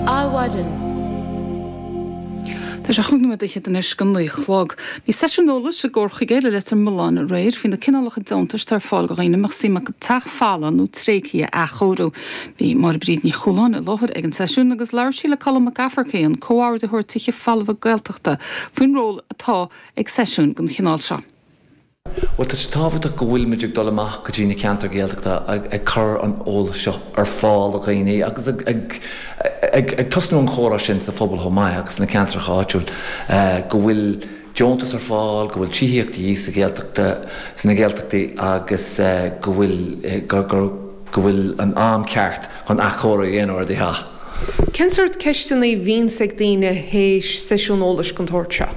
Adhmhaidin.. Tá sé chúig nóiméad fhichead anois go naoi a chlog. Bhí seisiún eolais i gComhar Chuigéal Leitir Mealláin aréir faoi na cineálacha deontais atá ar fáil do dhaoine a mbeadh suim acu teach folamh nó tréigthe a athchóiriú. Bhí Máire Bríd Ní Chualáin i láthair ag an seisiún agus labhair sí le Colm Mac Fhearraigh, an Comhordaitheoir Tithe Folmha Gaeltachta, faoin ról atá ag seisiúin den chineál seo. Bhuel, tá sé tábhachtach go bhfuilimid ag dul amach go dtí na ceantair Ghaeltachta ag cur an eolais seo ar fáil do dhaoine agus ag tosnú an chomhrá sin sa phobal chomh maith agus sna ceantair áitiúil go bhfuil deontais ar fáil, go bhfuil tithíocht de dhíth sa Ghaeltachta, sna Gaeltachtaí agus go bhfuil, go bhfuil an am ceart chun athchóiriú a dhéanamh ar. Cén sórt ceisteanna a bhíonns ag daoine théis seisiún eolais gon tsórt seo?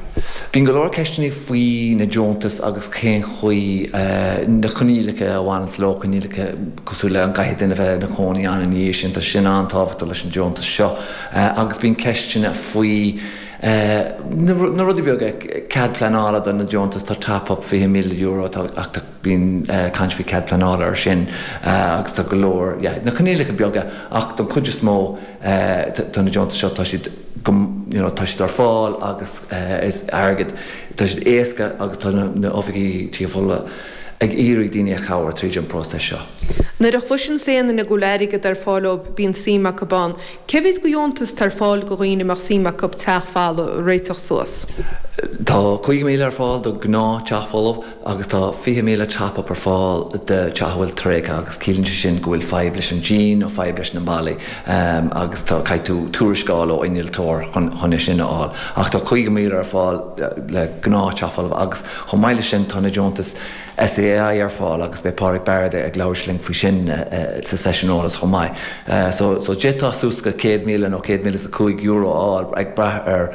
Bíonn go leor ceisteanna faoi na deontais agus cén chaoi, na coinníollacha a bhaineanns leo, coinníollacha cosúil le an gcaithfidh duine a bheith ina chónaí ann ina dhiaidh sin, tá sé sin an-tábhachtach leis an deontas seo, agus bíonn ceisteanna faoi na rudaí beaga, cead pleanála do na deontais, tá top-up €20,000 atá, Bíonn caint faoi cead pleanála ar sin agus tá go leor, yeah, na coinníollacha beaga ach don chuid is mó tá na deontais seo, tá siad go, you know, tá siad ar fáil agus is airgead, tá siad éasca agus tá na Oifigí Tithe Folmha ag iarraidh daoine a chabhair tríd an próiseas seo. Nuair a chloiseann aon duine go bhfuil airgead ar fáil ó bíonn suim acu ann. Cé mhéad go dheontas tá ar fáil go dhaoine a mbeadh suim acu teach folamh a réiteach suas? Tá 50,000 ar fáil do gnáth teach folamh. agus tá 20,000 top-up ar fáil do teach a bhfuil tréigthe agus ciallaíonn sé sin go bhfuil fadhb leis an díon nó fadhb leis na mballaí agus tá caithfidh tú tuarascáil ó innealtóir chun é sin a fháil ach tá 50,000 ar fáil le gnáth teach folamh agus chomh maith leis sin tá na deontais SEAI ar fáil agus beidh Pádraig Baird ag labhairt linn faoi sin sa seisiún eolais chomh maith so d'fhéadfá suas go 100,000 nó 100,000 is €5 a fháil ag brath ar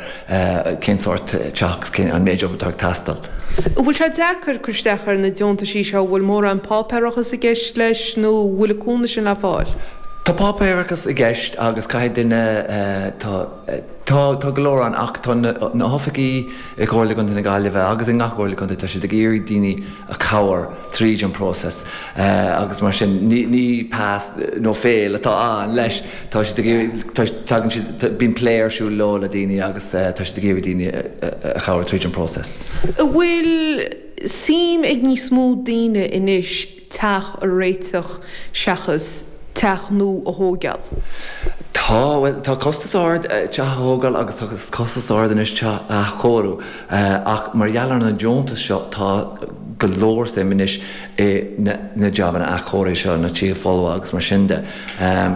cén sórt teach agus an méid obair atá ag teastáil. An bhfuil sé deacair cur isteach ar na deontaisí seo, an bhfuil mórán páipéarachas i gceist leis nó an bhfuil an cúnamh sin le fáil? Tá páipéarachas i gceist agus caithfidh duine, tá, tá, tá go leor ann ach tá na hoifigí i gComhairle Chontae na Gaillimhe agus i ngach Comhairle Contae, tá siad ag iarraidh daoine, cabhair tríd an bpróiseas agus mar sin ní pas nó fail atá ann leis. Tá siad ag iarraidh, tagann siad, bíonn plé ar siúl leo le daoine agus tá siad ag iarraidh daoine a chabhair tríd an bpróiseas. An bhfuil suim ag níos mó daoine anois teach a réiteach seachas teach nua a thóigeáil? Tá, bhuel, tá costas ard teach a thógáil agus tá costas ard anois teach a athchóiriú. Ach mar gheall ar na deontais seo tá go leor suim anois i na jabanna athchóirithe seo ar na tithe folmha agus mar sin de.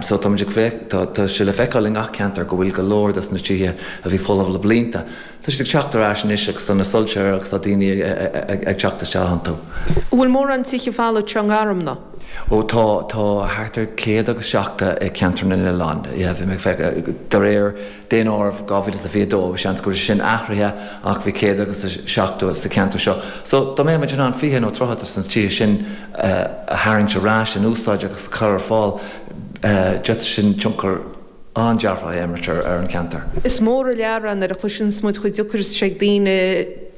So táimid ag tá sé le feiceáil i ngach ceantar go bhfuil go leor dos na tithe a bhí folamh le blianta, tá siad ag teacht ar ais anois agus tá na soilse ar agus tá daoine ag teacht isteach iontu. An bhfuil mórán tithe folmha seo i nGarmna? Ó tá, tá thart ar céad agus seachtó i Ceantar na nOileán, yeah, bhí mé ag feic, de réir, Daonáireamh 2022, seans go raibh sé sin athraithe ach bhí 170 sa ceantar seo. So, dá mbeimid in ann 20 nó 30 de na tithe sin a tharraingt ar ais, in úsáid agus a chur ar fáil, d'fhéadfadh sin tionchar an-dearfach a imirt ar an ceantar. Is mór an lear ann nuair a chloiseanns muid chomh deacair is atá sé ag daoine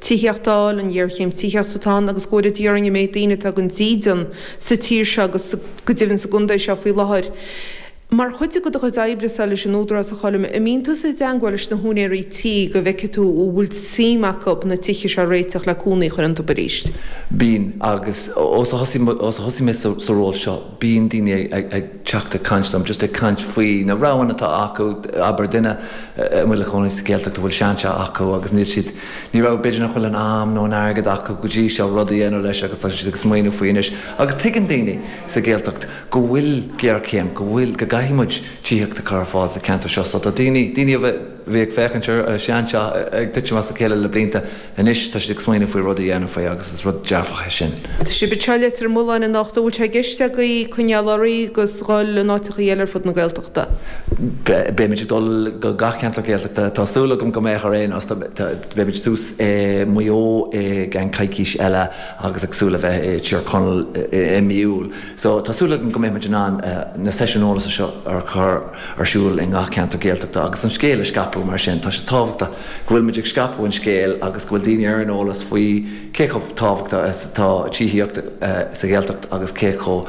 tithíocht a fháil, an ghéarchéim tithíochta atá ann agus go deimhin an méid daoine atá gan dídean sa tír seo agus go deimhin sa gcontae seo faoi láthair. Mar chuid de do chuid oibrese leis an Údarás a Choilm, an mbíonn tusa i dteangmháil leis na húinéirí tí go bhfeicfidh tú an bhfuil suim acub na tithe seo a réiteach le cónaí a chur iontub arís? Bíonn, agus ó, ó a thosaigh mé sa sa ról seo, bíonn daoine ag ag teacht ag caint liom, just ag caint faoi na roghanna atá acu, abair duine a bhfuil a chónaí sa Ghaeltacht a bhfuil seanteach acu agus níl siad, ní raibh b'fhéidir nach bhfuil an am nó an airgead acu go dtí seo rud a dhéanamh leis agus tá siad ag smaoineamh faoi anois agus tuigeann daoine sa Ghaeltacht go bhfuil géarchéim, go bhfuil, go gcaithfidh muid tithíocht a chur ar fáil sa cheantar seo. So tá daoine, daoine a bhí ag féachaint ar an sean teach ag titim as a chéile le blianta, anois tá siad ag smaoineamh faoi rud a dhéanamh faoi agus is rud dearfach é sin. Tá sibh i Leitir Mealláin anocht, an bhfuil sé i gceist agaibh coinneáil oraibh agus dhul in áiteachaí eile ar fud na Gaeltachta? Beidh muid ag dul go gach ceantar Gaeltachta, tá súil agam go mbeadh ar aon nós, beidh muid suas i Maigh Eo i gceann coicís eile agus ag súil a bheith i Tír Chonaill i mí Iúil. So, tá súil agam go mbeidh muid in ann na seisiúin eolasa seo a chur ar siúl i ngach ceantar Gaeltachta agus an scéal a scaipeadh mar sin. Tá sé tábhachtach go bhfuil muid ag scaipeadh an scéil agus go bhfuil daoine ar an eolas faoi cé chomh tábhachtach is atá tithíocht sa Ghaeltacht agus cé chomh